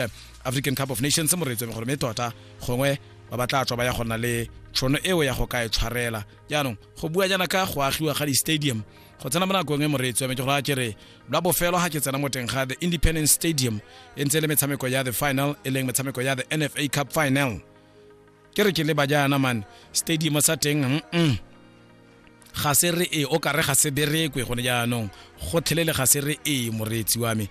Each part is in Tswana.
eh, african cup of nations moreetso gore mme tota gongwe ba ba tla tswa ba ya gona le tšhono eo ya go ka e tshwarela jaanong go bua jaana ka go agiwa ga di-stadium go tsena mo nakong e moreetso yame ke gore a ke re lwa bofelo ga ke tsena mo teng ga the independence stadium e ntse e le metshameko ya the final e leng metshameko ya the nfa cup final ke re ke leba jaana mane stadium sa teng mm -mm. ga se re e o kare ga se berekwe gone jaanong gotlhelele ga se re e moreetsi wa me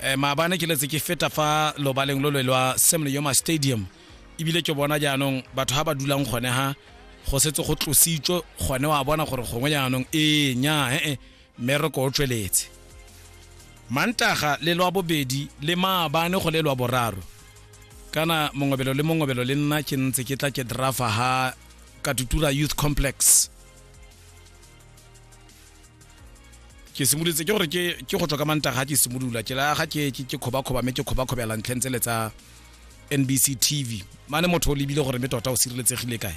eh, maabane ke letse ke feta fa lobaleng lo lwe lwa semle yoma stadium ebile ke bona jaanong batho ga ba dulang gone ha go setse go tlositswe gone wa bona gore gongwe jaanong ee nya ee eh, eh, mmereko o tsweletse mantaga le lwa bobedi le maabane go le lwa boraro kana mongobelo le mongobelo le nna ke ntse ke tla ke drafa ha katutura youth complex ke simolotse ke gore ke ke go tswa ka manta ga ke simolola ke la ga ke ke khoba khoba me ke khoba khoba la ntlhentse le tsa NBC TV mane motho o lebile gore me tota o sireletsegile kae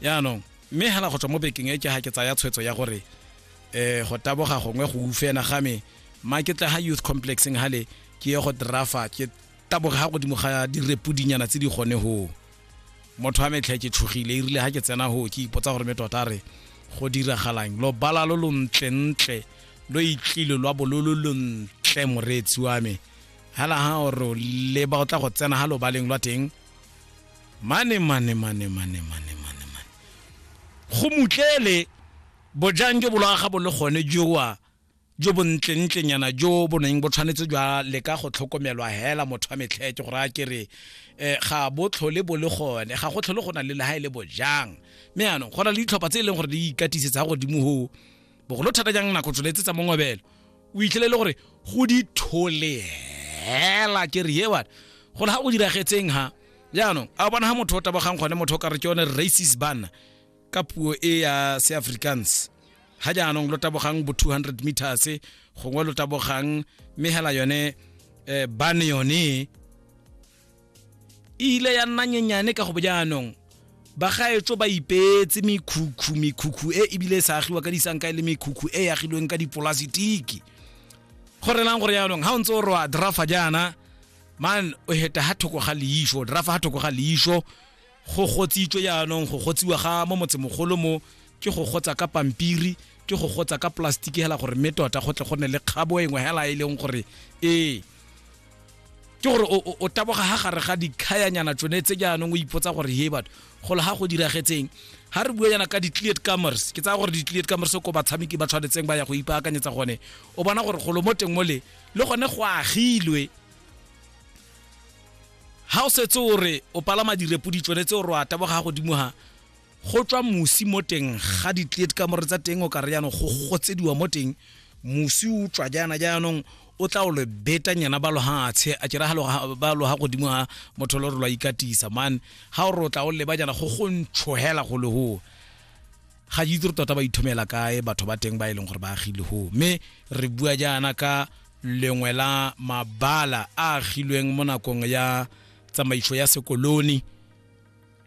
ya no me hala go tswa mo bekeng e ke ha ke tsaya tshwetso ya gore eh go taboga gongwe go ufena ga me ma ke tla ha youth complexing hale ke ye go drafa ke taboga ha godimo ga direpudinyana tse di gone ho motho a metlha ke tshogile e rile ga ke tsena go ke ipotsa gore me tota re go diragalang lo bala lo lontlentle lo itlile lwa bololo lontle moreetsi wa me hala ha oro le ba tla go tsena ha lo baleng lwa teng mane mane mane mane mane mane mane go mutlele bojang jo bolaga bo le gone jowa jo bo ntlentlenyana jo bo neng bo tshwanetse jwa leka go tlhokomelwa hela motho wa metlhete go raya kere um ga bo tlhole bo le gone ga go tlhole go na le leha e le bojang mme yanong go na le ditlhopha tse e leng gore di ikatisetsa godimo go bogolo thata jang nako tsholetse tsa mongobelo o itlhele e le gore go di thole hela kere ye bana go le ga go diragetseng ha jaanong a bona ga motho o tabogang gone motho o ka re ke yone racist banna ka puo e ya seafrikaans ga jaanong lo tabogang bo 200 meters gongwe lo tabogang mme hela yone eh, bane yone e ile ya nna nyenyane ka go bo jaanong bagaetso ba ipeetse mekhukhu mekhukhu e ebile e sa agiwa ka disanka e le mekhukhu e agilweng ka dipolasitiki go relang gore jaanong ga o ntse o roa drafa jaana man o heta ha thoko ga leisho drafa ha thoko ga leisho go gotsitswe jaanong go gotsiwa ga mo motsemogolo mo ke go gotsa ka pampiri ke go gotsa ka plastiki hela gore mme tota go tle go ne le kgabo engwe hela e leng gore ee ke gore o taboga ha gare ga dikhayanyana tsone tse jaanong o ipotsa gore he batho golo ga go diragetseng ha re bua yana ka di-cleared comers ke tsaya gore di-cleared comers ko batshameki ba tshwanetseng ba ya go ipaakanyetsa gone o bona gore golo mo teng mo le le gone go agilwe ha o setse o re o palama direpo di tsone tse o re wa taboga ga godimo ha go tswa mosi mo teng ga ditleet ka more tsa teng o ka re yanong go gotsediwa mo teng mosi o tswa jaana jaanong o tla o le beta nyana ba logatshe a kera ba loga godimo ga motho lo re lwa ikatisa man ga o re o tla o leba jana go go ntshohela go legoa ga ke itse re tota ba ithomela kae batho ba teng ba e leng gore ba agile go mme re bua jaana ka lengwe la mabala a agilweng mo nakong ya tsamaiso ya sekoloni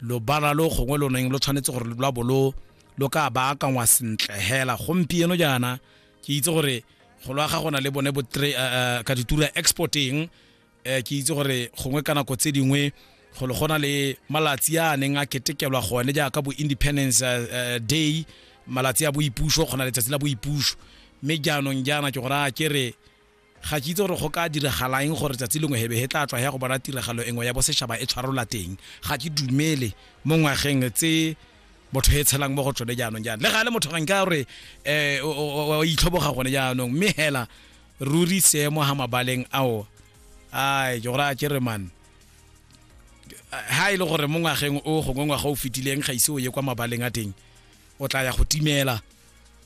lobala lo gongwe lo neng lo tshwanetse gore lwa bo lo lo ka baakangwa sentle hela gompieno jaana ke itse gore go lwa ga gona le bone bo eh, eh, ka ditura exporting um ke itse gore gongwe ka nako tse dingwe golo go na le malatsi a neng a ketekelwa gone jaaka bo independence uh, day malatsi a boipuso go na letsatsi la boipuso mme jaanong jaana ke gore a ke re ga ke itse gore go ka diragalang gore tsatsi lengwe hebe he tla tswa ya go bona tiragalo engwe ya bosetšhaba e tshwarola teng ga ke dumele mo ngwageng tse motho e tshelang mo go tsone jaanong jaana le ga le motho ga nka gore um itlhoboga gone jaanong mme hela ruri seemo ha mabaleng ao ai ke gore a kere man ha e le gore mo ngwageng o gongwe ngwaga o fetileng ga ise o ye kwa mabaleng a teng o tla ya go timela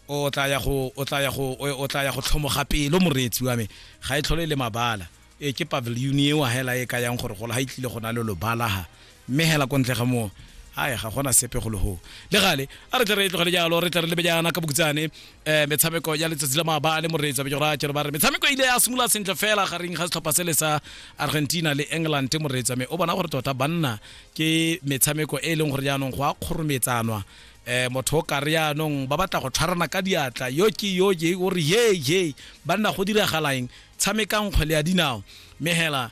o tla ya go o tla ya go o tla ya go tlhomoga pelo moreetsi wa me ga e tlhole le mabala e ke pavilion eo hela e ka yang gore golo ha e tlile go na le lobalaha mme hela ko ntle ga moo hai ga gona sepe go leho le gale a re tle re e tlogele jalo re tle re lebe jaana ka bokutsane um eh, metshameko ya letsatsi la maabane moreetsa be jora jalo ba re metshameko e ile ya simolola sentle fela gareng ga setlhopha se le sa argentina le england moreetsa me o bona gore tota banna ke metshameko e e leng gore jaanong go a kgorometsanwa eh motho o kare yaanong ba batla go tshwarana ka diatla yo ke yo ye o re ye ye banna go diragalaeng tshamekang kgwele ya dinao mme hela